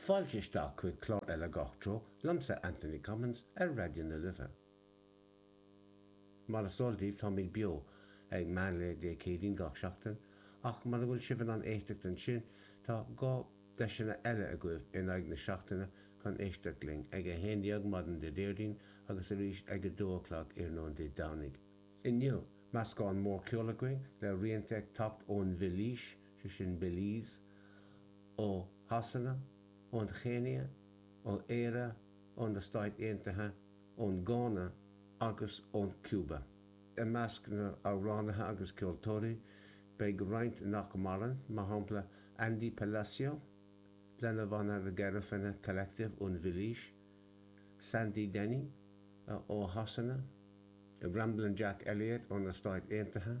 Fáilte isteach chuig clár eile Gach Treo liomsa Anthony Cummins ar Raidió na Life. Mar is eol daoibh táimid beo ag meán lae Dé Céadaoin gach seachtain ach mura bhfuil sibh in ann éisteacht ansin tá dá deiseanna eile agaibh in aghaidh na seachtaine chun éisteacht linn, ag 11:00 maidin Dé Déardaoin agus arís ag 2 a chlog iarnóin Dé Domhnaigh. Inniu, meascán mór ceoil againn le rianta ag teacht ón Bheilís, sé sin Belize, ó Shasana, ón Chéinia, ó Éire, ó na Stáit Aontaithe, ón Gána agus ón Cuba. I measc na n-amhránaithe agus ceoltóirí beidh roinnt nach maireann, mar shampla Andy Palacio, lena bhanna The Garifuna Collective ón Bheilís, Sandy Denny ó Shasana, Ramblin' Jack Elliott ó na Stáit Aontaithe,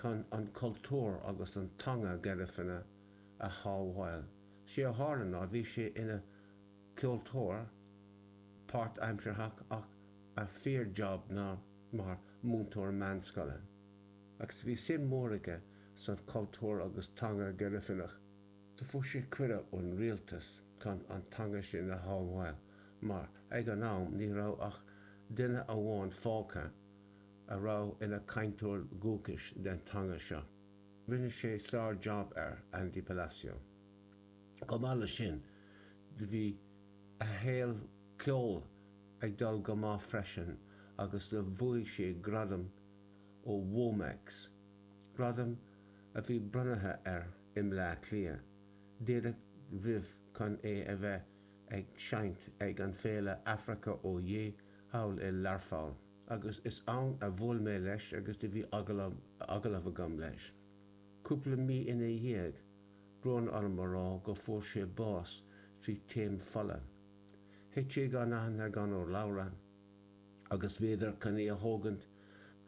chun an cultúr agus an teanga Garifuna a shábháil. Sé a tharla ná bhí sé ina cheoltóir páirtaimsearthach ach a fhíorjab ná mar múinteoir meánscoile. Agus bhí suim mór aige sa chultúr agus teanga Garifunach. Fuair sé cuireadh ón Rialtas chun an teanga sin a shábháil mar ag an am ní raibh ach duine amháin fágtha a raibh ina cainteoir dhúchais den teanga seo. Rinne sé sár-jab air, Andy Palacio. Chomh maith leis sin, bhí a shaol ceoil ag dul go maith freisin agus bhuaigh sé gradam ó Womex, gradam a bhí bronnaithe air i mBleá Cliath, díreach roimh chun é a bheith ag seinnt ag an féile Africa Oyé thall i Learpholl. agus is ann a bhuail mé leis agus do bhí agallamh agam leis. Cúpla mí ina dhiaidh, brón orm a rá go fuair sé bás trí taom fola. Thit sé gan aithne gan urlabhra agus bhíodar chun é a thógaint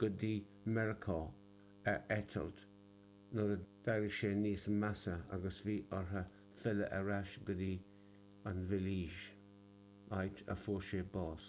go dtí Meiriceá ar eitilt nuair a d'éirigh sé níos measa agus bhí orthu filleadh ar ais go dtí an Bheilís, áit a fuair sé bás.